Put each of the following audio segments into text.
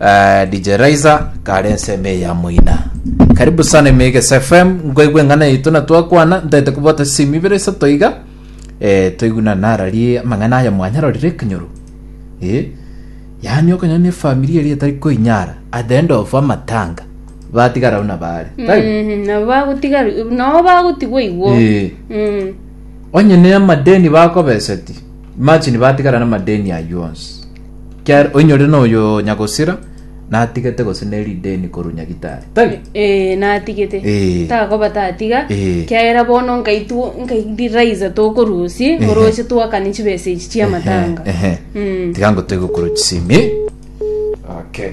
Eh, DJ Raiza kare ensemo eya moina karibu sana Emegese FM ngoigwe eng'ana yaito na twakwana ntaete kobwata simi ibere isato iga eh, toiguna narari amang'ana aya mwanyarorire ekenyoro eh, yaani okonyona efamiri eri etari koinyara at the end of amatanga batigara buna bare Tari? Mm, nabo bagotiga nabo bagotigwa igwo Eh. Mm. onye ne amadeni bakobeseti Imagine batigara namadeni aywo onsi. Kiar oinyorire noyo nyagosira natigete gose neri deni koru nyagitari. Tari? Eh, natigete Eh. takoba tatiga Eh. kiagera bono nkaitu nkaidiriza tokorusi Ehe. oroche twakane chibesa echi chiamatanga Ehe. Mm. Tiga ngo tegokoro chisimi. Okay.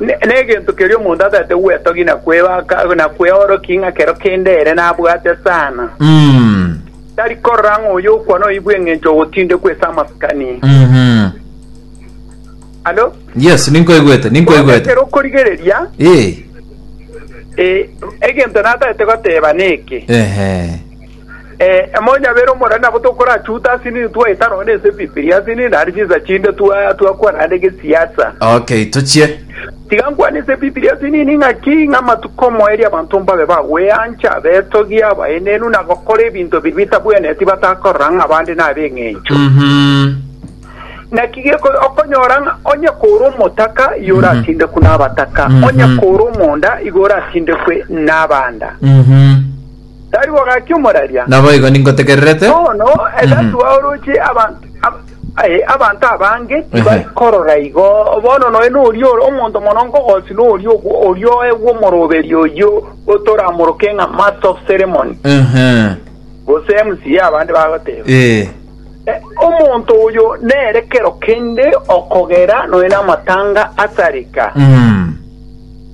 Ne- Negento keria omonto ataete gwetogia na kwebaka na kweorokia ng'a kero kende ere nabwate sana. Mm. Tari korora ng'a oyo okwana oibwe eng'encho ogotindekwa ase amasikani. Mhm. Alo? Yes, ninkoigwete, ninkoigwete. Ekero okorigereria, Eh. eh, egento nataete goteba neke. Ehe. Emonyabera omonene nabo tokorachute ase nini twaeta nonye na ense bibiri ase nini naende chinsa chinde twa- twakwana naende gesiasa. Okay, tochie. Tiga nkwane ense bibiri ase nini ng'aki ng'a amatuko omoerio abanto mbabe bagweancha, abetogia, abaenenu, na gokora ebinto biria bitabwenereti batakorora ng'a abande nab'eng'encho. Mhm. Naki geko okonyora ng'a onye kore omotaka igo oratindekwe nabataka, Mhm. onye kore omonda igo oratindekwe nabanda. Mhm. Tari bogaki omoraria. Naboigo ningotegererete. Bono egatua oroche abanto ab, aye, abanto abange tibari Ehe. korora igo. Bono noe noria ore omonto mono nkogosi noria ogwo oria oegwa omoroberi oyio otoramoroke ng'a Master of Ceremony, Ehe. gose MCA abande bagoteba. Ee. Eh, omonto oyo nere kero kende okogera noe namatanga asareka. Mm.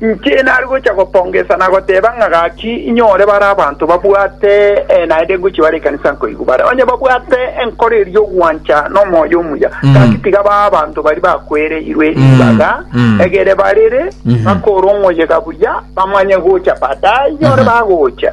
Inche nare gocha gopongesa na goteba ng'a gaki inyore bare abanto babwate, ee, naende ngochia bare ekanisa nkoigwe bare onye babwate enkoro eria y'ogwancha nomoyo omuya, gaki tiga babe abanto baria bakwereirwe ribaga, egere barere bakore omoyega buya, bamanye gocha baadaye inyore bagocha.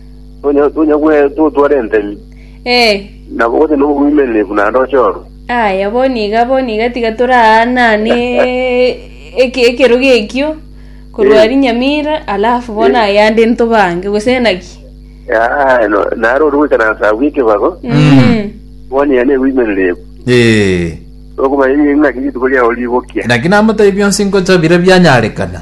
Tonya, tonya gwe totware entemi. Eh. Nabo gote no bwimenerefu na ndoche oru. Aya boni iga boni iga tiga toraanane eke- ekerogo ekio korwa Eh. rinyamira alafu bona Eh. yande ntobange gose naki Ah, no, naro ori goika na sabu ekebago. Mm. Boni ya ne bwimenerefu. Eh. Okomanya ng'aki rituko riao rigokia. Naki namotebi bionsi ngocha bire bianyarekana.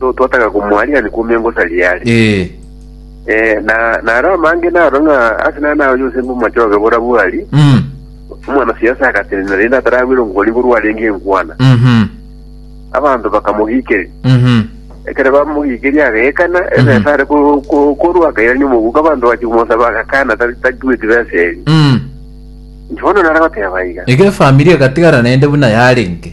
so twataka komoariani kwomia ngosa riare Ee. Eh, na naro amange naro ng'a ase nare naoyo ase ngomachoge bora bwari Mm. omwana siasa agatenena rende ataragwire ngori ngorwa arenge enkwana Mhm. abanto bakamogikeria Mhm. ekero bamogikeria agaekana ebesa are ko- ko- korwa akairania omoguka abanto bachi komosaba agakana tari- tatueti besa eri Mm. bono nare goteba iga Iga efamiri egatigara naende buna yarenge.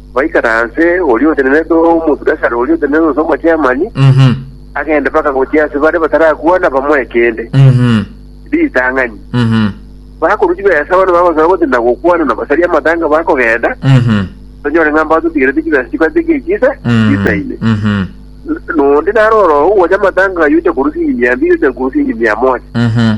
Baikare aase, oria otenenete Omobiashara oria otenenete gose Omogermani Mhm. agende mpaka gochia ase baria batarakwana bamoe kende, Mhm. ritang'ani. Mhm. Bakorwa chibesa bono bagosaba gotinda gokwana na basaria amatanga bakogenda, Mhm. tonyore ng'a mbatotigerete chibesa chibati gechiise Mhm. chisaine. Mhm. N- Nondi narora ogocha amatanga ayio ocha korwa siringi mia mbiri ocha korwa siringi mia moja. Mhm.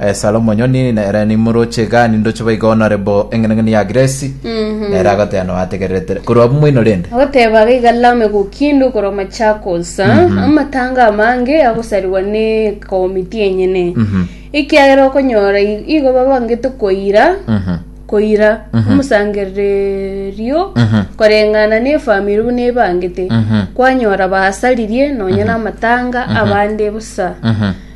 Esara omonyoni nere nimoroche gani ndoche boigo honorable eng'eneng'eni ya grace nere agoteba no ategererete korwa abwo moino rende agoteba gaiga lame gokindu korwa machakos amatanga amange agosarigwa ne komiti enyene ekiagera okonyora i- igo babangete koira Mhm. koira omosangererio Mhm. koreng'ana ne efamiri buna ebangete Mhm. kwanyora basaririe nonya namatanga abande busa Mhm.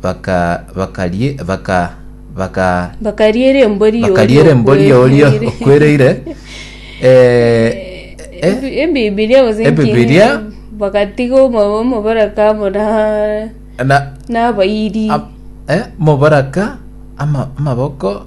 baka bakarie baka baka bakaria erembo ri'oria bakaria erembo ri'oria okwereire. okwereire eh, eh, Ebi- ebibilia gose Ebibilia. nkinyi, bagatiga omo- omobaraka amo na na n'abairi ab- eh, mobaraka ama- amaboko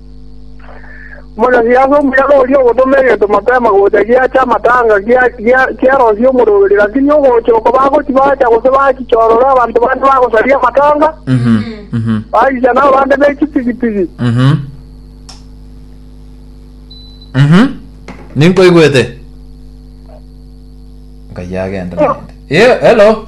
Omonyasiasa omuyaga oria ogotoma egento mapema gocha giacha amatanga giarosia omorweri, lakini ogocha oko bagochi bacha gose bachichorora abanto bande bagosaria amatanga, bachicha nabo bande be chipigipigi. Mhm. Mhm. Ninkoigwete. Ngai agenda nende. Ye, hello.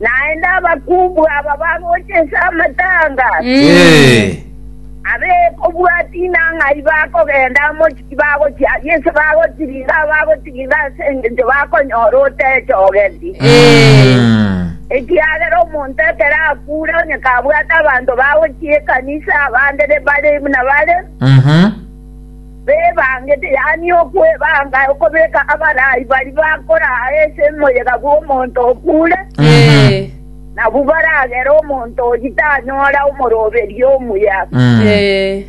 Naende abakungu aba bagocha inse amatanga, Ee. abekobwati nang'ai bakogenda amo tibagochiaria inse bagotiringa abagotiringa ase engencho bakonyora otechogeti. Mm. Ekiagera omonto ekero akure onye kabwate abanto bagochia ekanisa abande bare buna bare, Mhm. bebangete, yaani okwebanga okobeka abarai baria bakoraa ase omoyega bw'omonto okure, Eh, nabwo baragere omonto oyio tanyora omoroberio omuya. eh,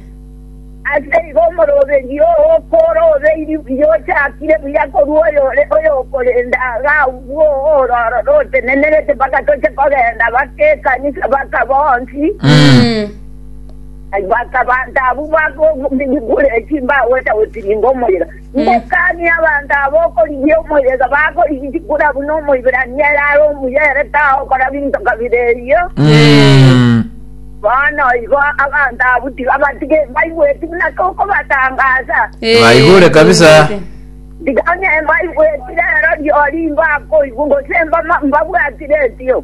Ase igo omoroberio oo okorobeirie buya ochakire buya korwa oyore oyokorenda agwo ororo rotenenerete mpaka toche kogenda baka ekanisa baka bonsi mm, Bakabanta abwo bakoigure chimbao esaoti ninga omoyega. Ngokani abanto aba okorigia omoyega bakorigia chikura buna Omoiberania ere are omuya ere tagokora binto kabere erio. Mm. Bono igo abanto abwo tiga batige baigweti buna kokobatangaasa. Eh, Baigure kabisa. baigurete. Tiga onye mbaigwetire ero riori mbakoigwa gose mbama- mbabwatire etio.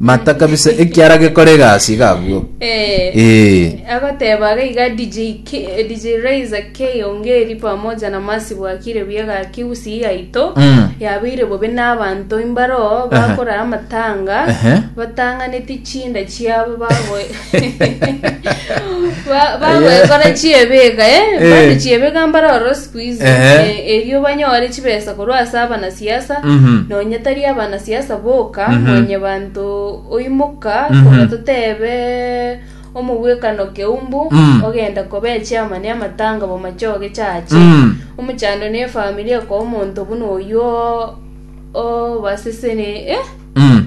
Mata kabisa ekiara gekora egasi iga abwo. Eh, Eh. agoteba aga iga DJ, K, eh, DJ Raiza K Ongeri pamoja na Masi Bwakire Biega Kiusi yaito Mm. yabeire bobe n'abanto imbaro bakora amatanga Ehe. batang'aneti chinda chiabo bago Ba- bagwekora chiebeka eh, Eh. bande chiebeka mbare oro siku hizi Ehe. Eh, erio banyore chibesa korwa ase abanasiasa Mhm. nonye tari abanasiasa boka Mhm. nonye banto oimoka Mhm. konya totebe omobwekano keumbu Mm. ogenda kobe chiama ne amatanga bomachoge chache Mm. omochando ne efamilia kwa omonto buna oyuo obasesene eh Mm.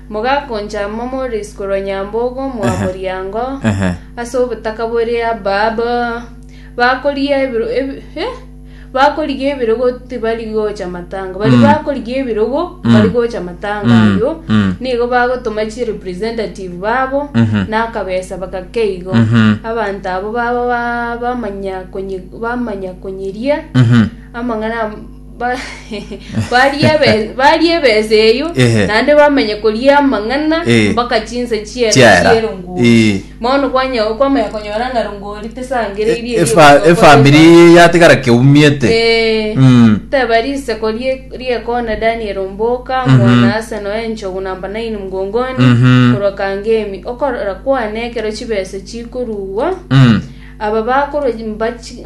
Mogakonchama more isiko korwa Nyambogo omoa moriango, Ehe. ase obotaka bore Abab, bakorigia ebiro ebi- eh, bakorigia ebirogo tibari gocha matanga. Bari Mm. bakorigia ebirogo Mm. bari gocha matanga Mm, ayio, mm. nigo bagotoma chi representative babo Mhm. nakabesa bakakeigo. Mhm. Abanto abo baba ba- bamanya konye- bamanya konyeria Mhm. amang'ana Ba- barie ebe- barie ebesa eyio Ehe. naende bamenye koria amang'ana Eh. mpaka chinsa chiere Chiera. chierongori Eh. bono kwanya- kwamanya konyora ng'a rongori tesangereirie erio Efa- rigokorerwa. efamiri yatigara keumiete Eh. Mm. teba riseko rie- riekona daniel omboka Mhm. mwana ase noe enchogu namba 9 mgongoni Mhm. korwa kangemi okorora kwane ekero chibesa chikorugwa Mm. aba bakorwa mbachi-